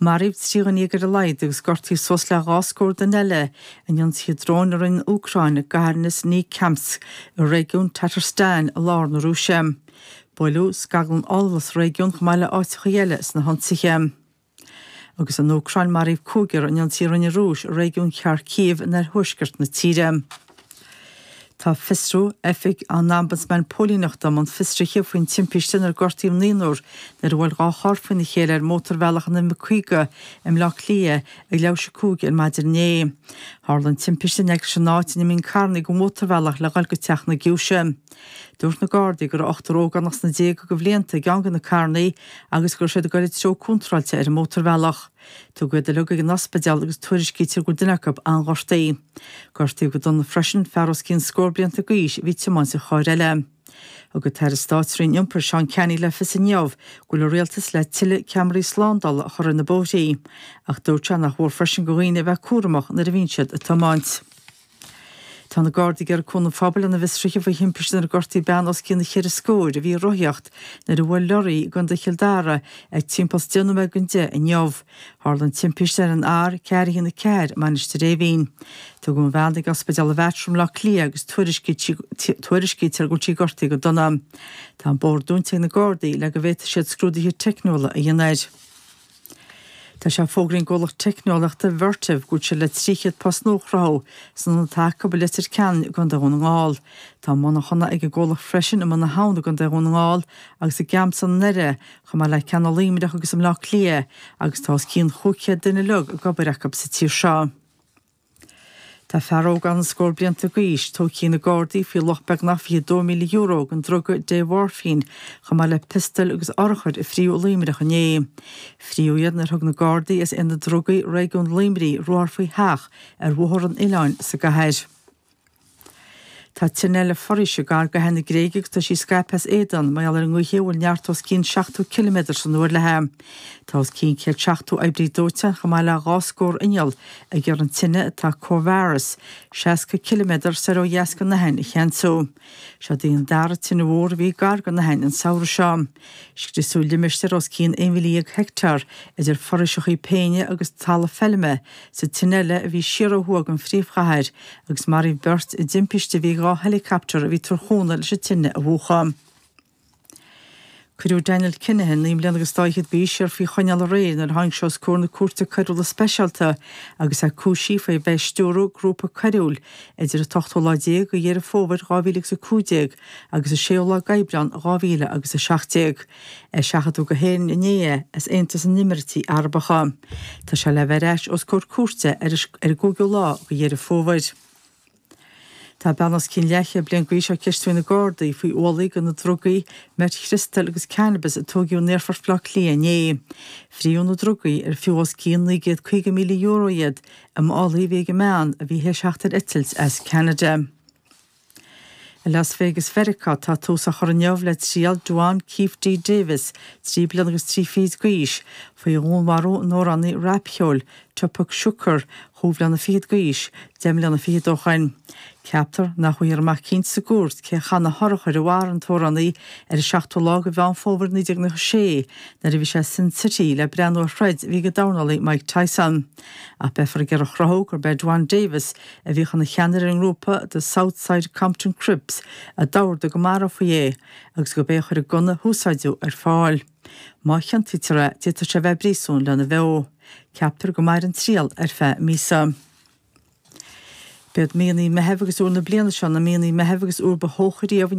Maraíodh trí dhuine dhéag ar a laghad agus gortaíodh suas le dhá scór duine eile in ionsaithe dróin a rinne an Úcráin i gcathair Nizhnekamsk i réigiún Tatarstan i lár na Rúise. Buaileadh scaglann ola sa réigiún chomh maith le áiteachaí eile sna hionsaithe. Agus san Úcráin, maraíodh cúigear in ionsaí a rinne an Rúis i réigiún Kharkiv in oirthuaisceart na tíre. Tá fiosrú Oifig an Ombudsman Póilíneachta i mbun fiosruithe faoin timpiste inar gortaíodh naonúr nuair a bhuail dhá charr faoina chéile ar mhótarbhealach an M50 i mBleá Cliath ag leathuair tar éis a 5 ar maidin inné. Tharla an timpiste in aice leis an áit ina n-imíonn carranna den mhótarbhealach le dhul go Teach na Giúise. Dúirt na Gardaí go raibh ochtar ógánach sna déaga de bhlianta i gceann de na carranna agus go raibh siad ag dul sa treo contráilte ar an mótarbhealach. Tugadh iad uilig ag an ospidéal agus tuairiscítear go bhfuil duine acu an-ghortaithe. Gortaíodh go dona freisin fear os cionn scór blianta d'aois a bhí ag tiomáint an chairr eile. Thug an tAire Stáit Roinn Iompair Seán Canney le fios inniu go bhfuil an Rialtas le tuilleadh ceamaraí slándála a chur ar na bóithrí, ach dúirt sé nach mhór freisin do dhaoine a bheith cúramach nuair a bhíonn siad ag tiomáint. Tá na Gardaí ag iarraidh cúnamh an phobail lena bhfiosruithe faoi thimpist inar gortaíodh bean os cionn cheithre scóir a bhí ag rothaíocht nuair a bhuail leoraí í i gContae Chill Dara ag timpeall 's deich nóiméad don deich inniu. Tharla an timpist ar an R404 i Mainistir Eimhín. Tugadh an bhean chuig Ospidéal an Mater i mBaile Átha Cliath agus tuairiscítear go bhfuil sí gortaithe go dona. Tá an bóthar dúnta ag na Gardaí le go bhféadfaidh siad scrúduithe teicniúla a dhéanamh air. Tá sé fógraithe ag an gcomhlacht teicneolaíochta Vertiv go bhfuil siad le 300 post nua a chruthú san ionad atá acu i Leitir Ceanainn i gContae Dhún na nGall. Tá monarchana ag an gcomhlacht freisin i mBun na hAbhann i gContae Dhún na nGall agus i gCamsan i nDoire, chomh maith le ceann i Luimneach agus i mBleá Cliath, agus tá os cionn 500 duine ag obair acu sa tír seo. Tá fear óg ann scór blianta d'aois, tógtha ag na Gardaí faoi luach beagnach €22,000 den druga démhoirfín, chomh maith le piostal agus urchair a fríothadh i Luimneach inné. Fríothadh iad nuair a thug na Gardaí as Aonad Drugaí Réigiún Luimnigh ruathar faoi theach ar Bhóthar an Oileáin sa gcathair. Tá tine eile foraoise gar d'Aithin na Gréige agus tá sí scaipthe as éadan, mar gheall ar an ngaoth a bhfuil neart os cionn 70 ciliméadar san uair léithi. Tá os cionn céad seachtó oibrí dóiteáin, chomh maith le dhá scór inneall, ag iarraidh an tine, atá corradh is 60 ciliméadar soir ó dheas den Aithin, a cheansú. Seo í an dara tine mhór a bhí gar don Aithin an samhradh seo. Scriosadh limistéar os cionn 11,000 heicteár, idir fhoraoiseacha péine agus talamh feilme, sa tine eile a bhí siar ó thuaidh den phríomhchathair, agus maraíodh beirt i dtimpiste a bhí ag dhá heileacaptar a bhí ag tabhairt cúnamh leis an tine a mhúchadh. Cuireadh Daniel Kinahan, naoi mbliana agus dhá fhichead d'aois, siar faoi choinneáil aréir nuair a tháinig sé os comhair na Cúirte Coiriúla Speisialta agus é cúisithe faoi bheith ag stiúradh grúpa coiriúil idir an t-ochtú lá déag de Dheireadh Fómhair 2015 agus an 6ú lá gAibreán 2000 agus 17. Eiseachadadh go hÉirinn inné é as Aontas na nÉimíríochtaí Arabacha. Tá sé le bheith ar ais os comhair cúirte ar an gcúigiú lá go Dheireadh Fómhair. Tá bean os cionn leathchéad bliain gaois á ceistiú ag na Gardaí faoi ualaí de na drugaí meit chriostail agus cannabas a tóigeadh in Aerfort Bhleá Cliath inné. Fríodh na drugaí, ar fiú os cionn €950,000 iad, i málaí a bhí ag an mbean a bhí théis theacht ar eitilt as Ceanada. I Las Vegas Mheiriceá tá tús á chur inniu le triail Duane Keffe D. Davis, 3 bliana agus 3 fichid gaois, faoi dhúnmharú an amhránaí rapcheoil, Tupac Shakur, chúig bhliana fichead gaois, deich mbliana fichead ó shoin. Ceaptar nach bhfaighfear amach cinnte sa gcúirt cé a chaith na hurchair a mharaigh an t-amhránaí ar an 7ú lá de Mheán Fómhair 1996 nuair a bhí sé i Sin City le breathnú ar throid a bhí ag an dornálaí Mike Tyson. Ach beifear ag iarraidh a chruthú gurb é Duane Davis, a bhíodh ina cheannaire ar an ngrúpa The South Side Compton Crips, a d'ordaigh go marófaí é agus gurb é a chuir an gunna a húsáideadh ar fáil. Má chiontaítear é, d'fhéadfadh sé bheith i bpríosún lena bheo. Ceaptar go mairfidh an triail ar feadh míosa. B'iad míonna Meitheamh agus Iúil na bliana seo na míonna Meitheamh agus Iúil ba theocha riamh in